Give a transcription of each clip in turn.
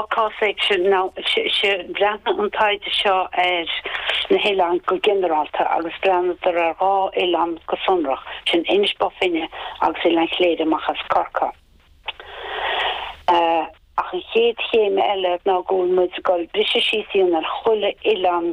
Agus breathnaíonn an taighde seo ar na hoileáin go ginearálta agus breathnaítear ar dhá oileán go sonrach, sin Inis Bó Finne agus Oileán Chléire amach as Corcaigh. Ach an chéad chéim eile nó go bhfuil muid ag goil ag briseadh síos a dhéanamh ar chuile oileán.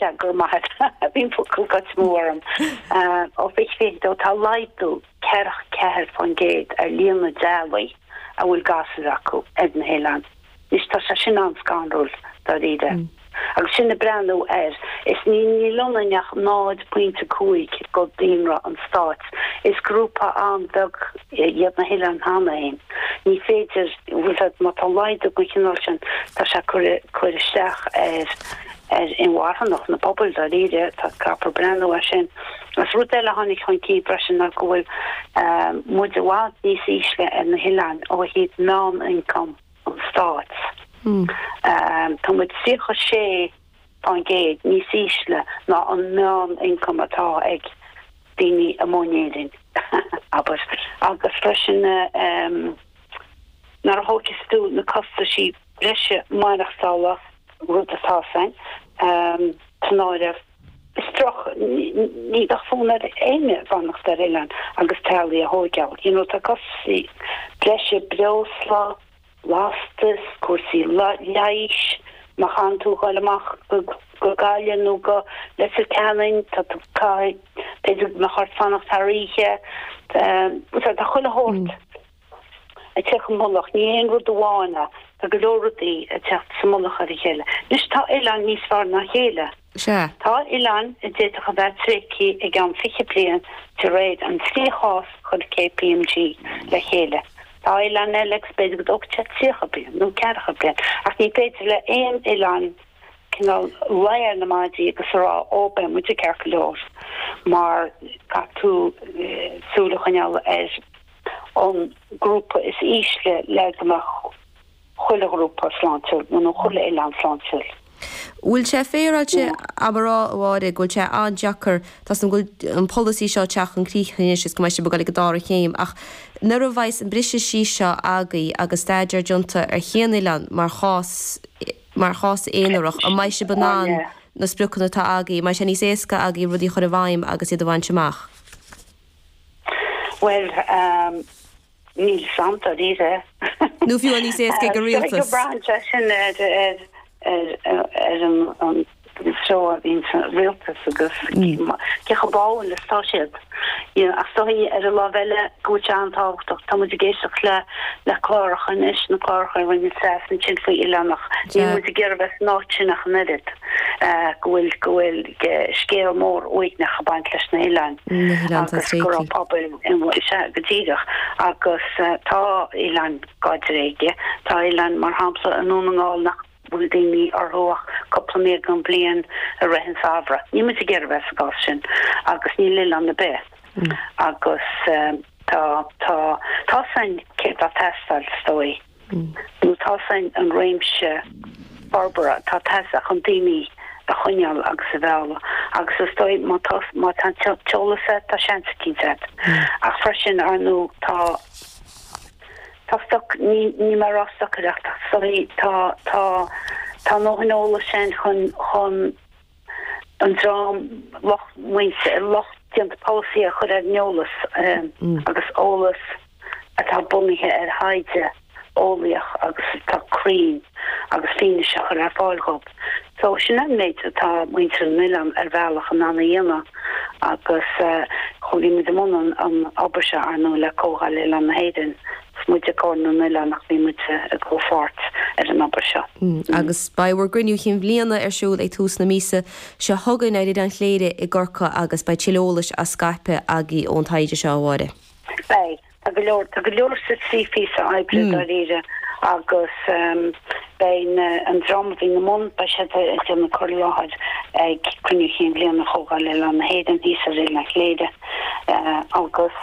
Cead go raibh maith agat. Bhí an focal got move orm. Ó mhic léinn dó, tá laghdú ceithre, ceathair fán gcéad ar líon na dteaghlach a bhfuil gasúir acu ar na hoileáin. Anois, tá sé sin an-scanrúil, dáiríre. Agus sin ag breathnú air, is níl ionainn ach 0.5 de dhaonra an stáit, is grúpa an-bheag iad na hoileáin cheana féin. Ní féidir, bhfuil fhios agat, má tá laghdú den chineál sin, tá sé ag cur isteach ar, ar inmharthanacht na pobail. Dáiríre, tá, caithfear breathnú air sin. Agus rud eile a tháinig chun cinn freisin ná go bhfuil muid i bhfad níos ísle ar na hoileáin ó thaobh meán-ioncam an stáit. Tá muid 36% níos ísle ná an meán-ioncam atá ag daoine amuigh in Éirinn, abair. Agus freisin, nuair a thógas tú na costaisí breise maireachtála, rud atá ansin san áireamh. Is droch ní bheadh fonn ar éinne fanacht ar oileán agus teaghlaigh a thóigeáil. You know, tá costaisí breise, breosla, lastas, cúrsaí leighis, má chaitheann tú dhul amach go Gaillimh nó go Leitir Ceanainn, tá tú, caithfidh, b'fhéidir go mbeadh ort fanacht thar oíche, tá chuile shórt. ag teacht i mullach, ní haon rud amháin é. Tá go leor rudaí ag teacht sa mullach ar a chéile. Anois, tá oileáin níos fearr ná a chéile. Tá oileáin a d'fhéadfadh a bheith tréigthe i gceann fiche bliain de réir an tríú cás a chuir KPMG le chéile. Tá oileáin eile agus b'fhéidir go dtógfadh sé tríocha bliain nó ceathracha bliain. Ach ní féidir le haon oileán cineál luí ar na maidí agus a rá, 'Ó, beidh muide ceart go leor mar caithfidh tú súil a choinneáil ar an grúpa is ísle le go mbeadh chuile ghrúpa sláintiúil, nó nó chuile oileán sláintiúil. Bhfuil sé féaráilte a'm a rá, a Mháire, go bhfuil sé an-deacair, tá 's agam go bhfuil an polasaí seo ag teacht chun críche anois is go mbeidh sé ag gabháil ag an dara céim, ach nuair a bheas an briseadh síos seo agaibh agus staidéar déanta ar chaon oileán mar chás, mar chás aonarach, an mbeidh sé i bhfad na spriocanna atá agaibh, an mbeidh sé níos éasca agaibh rudaí a chur i bhfeidhm agus iad a bhaint amach? Bhuel, níl sé, dáiríre. Nó fiú níos éasca ag an rialtas. Tá sé ag brath ansin ar an treo a bhíonn sa rialtas agus cé chomh báúil atá siad. Ach is dóigh ar an láimh eile go bhfuil sé an-tábhachtach, tá muid ag éisteacht le cláracha anois, na cláracha a rinne an sas ansin faoi oileánacha. Níl muid ag iarraidh a bheith san áit sin ach an oiread. go bhfuil scéal mór uaigneach ag baint leis na hoileáin agus go raibh pobail go díreach agus tá oileáin dá dtréigean, tá oileáin mar shampla i nDún na nGall nach bhfuil daoine orthu ach cúpla mí den bhliain i rith an tsamhraidh. Níl muid ag iarraidh bheith sa gcás sin agus níl oileán ar bith agus tá tá tá sin céard atá ag teastáil is dóigh. Nó tá sin an réimse forbartha atá ag teastáil chun daoine a choinneáil agus a mhealladh. Agus is dóigh, má tá, má tá an t-eolas agat, tá seans eicínt agat. Ach freisin, ar ndóigh, tá, tá stoc, ní, níl mé ag rá stocaireacht, ach, sorry, tá, tá, tá an dóthain eolais ann chun, chun. an dream lucht, an lucht déanta polasaí a chur ar an eolas agus eolas atá bunaithe ar thaighde eolaíoch agus atá cruinn agus fianaise a chur ar fáil dhób. So, sin an méid atá muintir na n-oileán ar bhealach in ann a dhéanamh agus chuaigh muid i mbun an obair seo, ar ndóigh, le Comhdháil Oileán na hÉireann 's muide Comhar na nOileán ach bhí muid i gcomhpháirt ar an obair seo. Agus beidh bhur gCruinniú Cinn Bhliana ar siúl ag tús na míosa seo chugainn ar Oileán Chléire i gCorcaigh agus beidh tuilleadh eolais á scaipeadh agaibh ón taighde seo, a Mháire. Beidh. Tá go leor, tá go leor, sin trí phíosa oibre, dáiríre, agus beidh na, an dream a bhí ina mbun, beidh siad ag déanamh cur i láthair ag Cruinniú Cinn Bhliana Chomhdháil Oileán na hÉireann thíos ar Oileán Chléire agus,